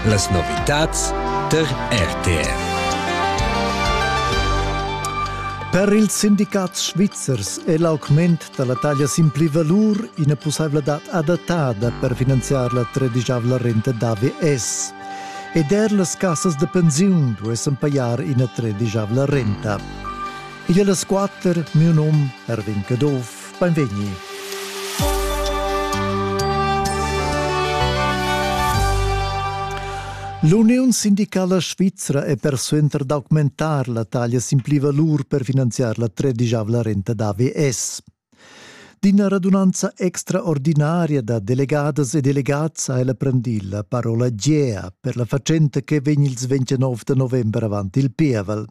Las novitads per RTR. Per ils sindicats svizzers è l'augment da la taglia sin pli valur ina pussaivladad adattada per finanziar la tredigiavla renta d'AVS. Ed er las cassas da pensiun duessan pajar ina tredigiavla renta. Igl è las quatter, miu num Erwin Caduff. Beinvegni. L'Uniun sindicala svizra è persuenter d'augmentar la taglia sin plivalur per finanziar la tredigiavla renta da AVS. D'ina radunanza extraordinaria da delegadas e delegats ha ella prendì la parola Gea per la fatschenta che vegn il 29 november avant il pievel.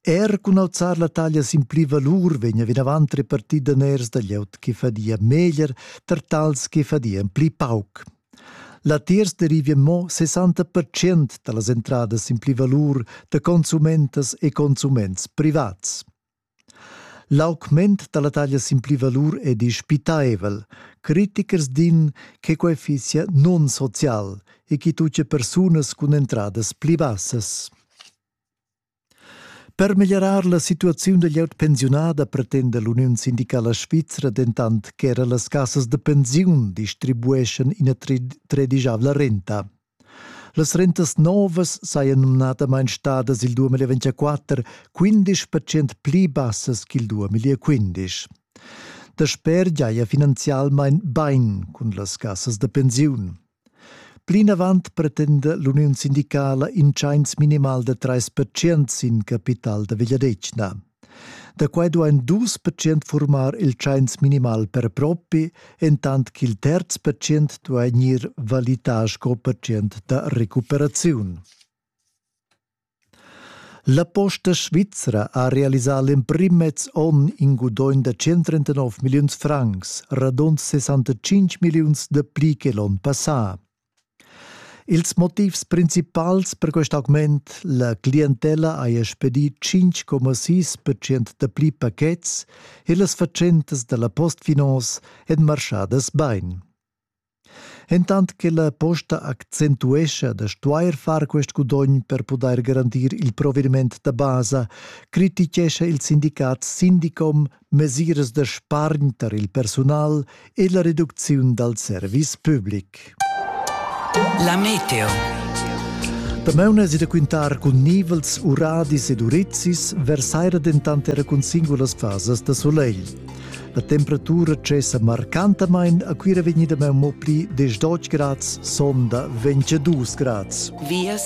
Er cun auzar la taglia sin pli valur vegna vinavant repartì daners da glieud che fadia meglier tar tals che fadian pli pauc. Latiers derivia mo 60% da las entradas sin pli valur da consumentas e consuments privats. L'augment dalla taglia sin pli valur è dispitaivel. Critichers din che quei fisia nonsocial e che tucce persunas cun entradas pli bassas. Per meglierar la situaziun da glieud pensiunada pretenda l'Uniun sindicala svizra dentant che era las cassas da pensiun distribueschan ina tredigiavla renta. Las rentas novas sajan numnadamain stadas il 2024 15 percent pli bassas ch'il 2015. Dasper giaja finanzialmain bain cun las cassas da pensiun. Plinavant pretenda l'uniun sindicala in tschains minimal da 3% sin capital da vegliadetgna. Da quai duain dus pertschient furmar il tschains minimal per propi, entant ch'il terz pertschient duai gnir valità sco pertschient da recuperaziun. La Posta Svizra ha realisà l'emprim mez onn in gudogn da 139 milliuns francs, radund 65 milliuns da pli che l'onn passà. Ils motivs principals per quest augment la clientella haja spedì 5,6% dapli pachets e las fatschentas da la Postfinance èn marschadas bain. Entant che la posta accentuescha da stuair far quest gudogn per pudair garantir il provediment da basa, crititgescha il sindicat Sindicom mesiras da spargn tar il persunal e la reducziun dal service public. La meteo. Damaun es da quintar cun nivels, uradis ed urizis, versaira dentant era cun singulas fasas da solegl. La temperatura cessa marcantamain a Cuira vegnida mo pli 10 grads, sonda 22 grads. Vias